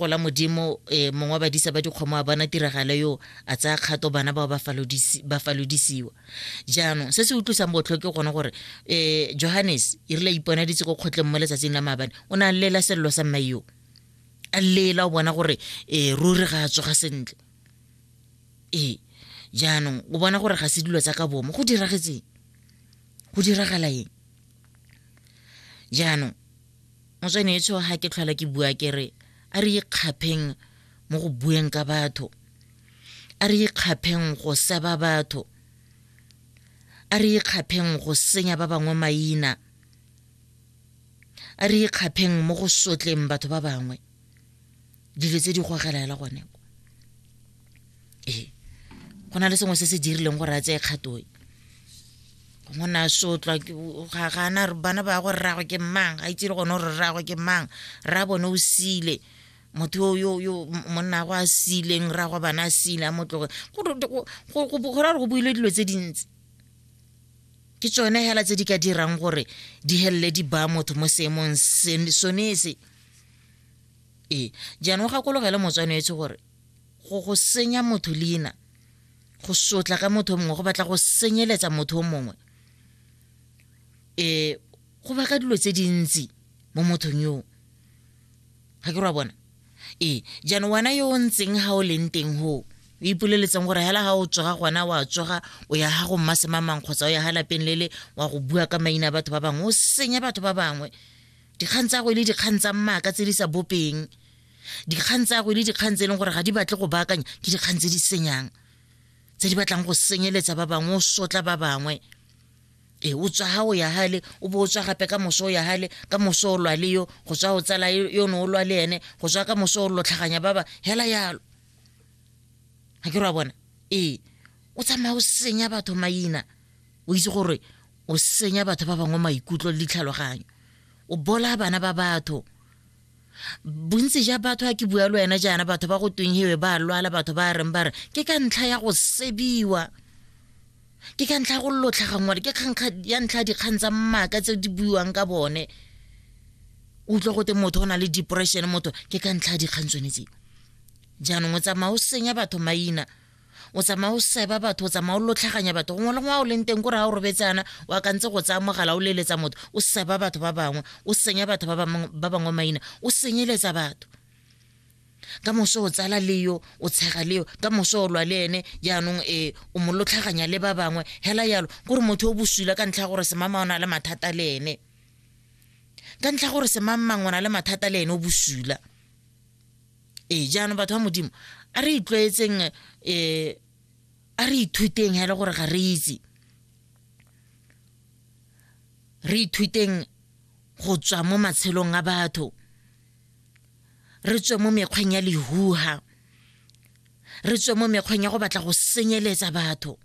gola modimo um mongwe wa badisa ba dikgomo a bona tiragalo yo a tsaya kgato bana bao ba falodisiwa jaanong se se utlwisang botlho ke gone gore um johannes e rile iponaditse ko kgotleng mo letsatsing la maabane o ne a llela selelo sa mmae yo a llela o bona gore um ruri ga a tsoga sentle ee jaanong o bona gore ga se dilo tsa ka bomo go diragetseng go diragala eng jaanong motsweneetsho ga ke tlhola ke bua ke re a re ikgapheng mo go bueng ka batho a re ikgapheng go seba batho a re ikgapheng go senya ba bangwe maina a re ikgapheng mo go sotleng batho ba bangwe dilo tse di gogela hela gone ee go na le sengwe se se dirileng gore a tseye kgato e go na sotlwa ga gana bana ba gore rragwe ke mang ga itse le gone gore rragwe ke mang rra bone o sile motho yo yo monna go a sileng rra go bana a sile a motloge go ra gore go buile dilo tse dintsi ke tsone hela tse di ka dirang gore di helele di baya motho mo seemong sone se ee jaanong gakologele motswanetse gore go go senya motho leina go sotla ka motho o mongwe go batla go senyeletsa motho o mongwe um go baka dilo tse dintsi mo mothong yoo ga ke ra bona ee jaanong wena yo o ntseng ga o leng teng goo o ipoleletseng gore hela ga o tsoga gona wa tsoga o ya ga go mmasemamang kgotsa o ya ga lapeng lele wa go bua ka maina a batho ba bangwe o senya batho ba bangwe dikgang tsa go e le dikgang tsa mmaaka tse di sa bopeng dikgang tsa go e le dikgang tse e leng gore ga di batle go baakanya ke dikgang tse di senyang tse di batlang go senyeletsa ba bangwe o sotla ba bangwe e o tswa ga o ya gale o bo o tswa gape ka moso o ya gale ka moso o lwa le yo go tswa o tsala yo ne o lwa le ene go tswa ka moso o lotlhaganya ba ba hela yalo ga ke re wa bona ee o tsamaya o senya batho maina o itse gore o senya batho ba bangwe maikutlo le ditlhaloganyo o bola bana ba batho bontsi ja batho a ke bua le wena jaana batho ba go tweng hewe ba lwala batho ba reng ba re ke ka ntlha ya go sebiwa ke ka ntlha ya go lotlhagangwale ke kgankga ya ntlha dikgang tsa mmaka tse di buiwang ka bone utlwa gote motho o na le depression motho ke ka ntlha ya dikgang tsone tseo jaanong o tsamaya o senya batho maina o tsamaya o seba batho o tsamaya o lotlhaganya batho gongwe le ngwa o leng teng kore ga o robetsana o akantse go tsaya mogala o leletsa motho o seba batho ba bangwe o senya batho ba bangwe maina o senyeletsa batho ka moso o tsala le yo o tshega le yo ka moso o lwa le ene jaanong e o mo lotlhaganya le ba bangwe hela yalo kore motho o bosula ka ntlha ya gore semama o na le mathata le ene ka ntlha gore semangmang o na le mathata le ene o bosula ee jaanong batho ba modimo a re itlwaetseng um eh, a re ithuteng hele gore ga re itse re ithuteng go tswa mo matshelong a batho re tswe mo mekgweng ya lehuha re tswe mo mekgweng ya go batla go senyeletsa batho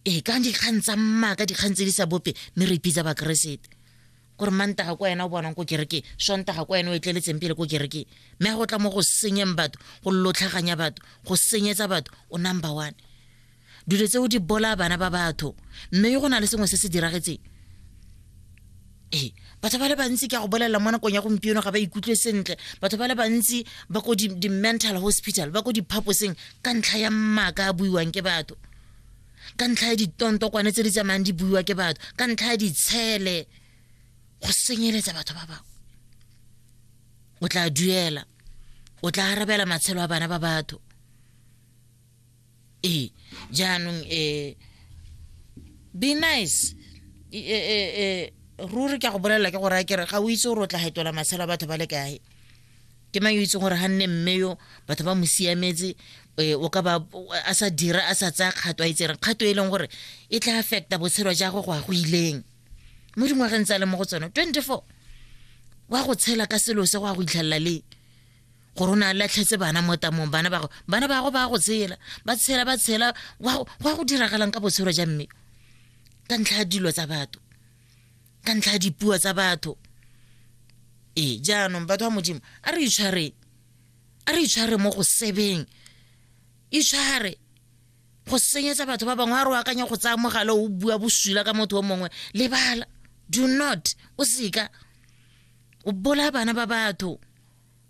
ee ka dikgang tsa mmaka dikgang tse di sa bope mme re ipitsa bakeresete kore mantaga kwa ena o bonang ko kerekeng sontaga kwa ena o etleletseng pele ko kerekeng mme ga go tla mo go senyeng batho go lotlhaganya batho go senyetsa batho o number one dilo tseo di bolaya bana ba batho mme go na le sengwe se se diragetseng ee batho ba le bantsi ke a go bolelela mo nakong ya gompieno ga ba ikutlwe sentle batho ba le bantsi ba ko di-mental hospital ba ko diphaposeng ka ntlha ya mmaka a buiwang ke batho ka ntlha ya ditontokwane tse di tsamayang di buiwa ke batho ka ntlha ya ditshele go senyeletsa batho ba bangwe o tla duela o tla arabela matshelo a bana ba batho ee jaanong um be nice um ruri ke a go bolelela ke gore a kere ga o itse gore o tla hetola matshelo a batho ba le kae ke mang yo itseng gore ga nne mme yo batho ba mo siametse eh, o ka ba a sa dira a sa tsaya kgato a itseng kgato e leng gore e tla affecta botshelo ja go go a go ileng mo dingwageng tsa le mo go tsone 24 wa go tshela ka selo se go a go itlhelela le gore o ne a latlhetse bana mo tamong bana bago bana bago ba go tshela ba tshela ba tshela wa go diragalang ka botshelo ja mme ka ntlha ya dilo tsa batho ka ntlha ya dipuo tsa batho ee jaanong batho ba modimo a re itshware a re itshware mo go sebeng itshware go senyetsa batho ba bangwe a re o akanya go tsaya mogala o bua bosula ka motho o mongwe lebala do not o seka o bolaya bana ba batho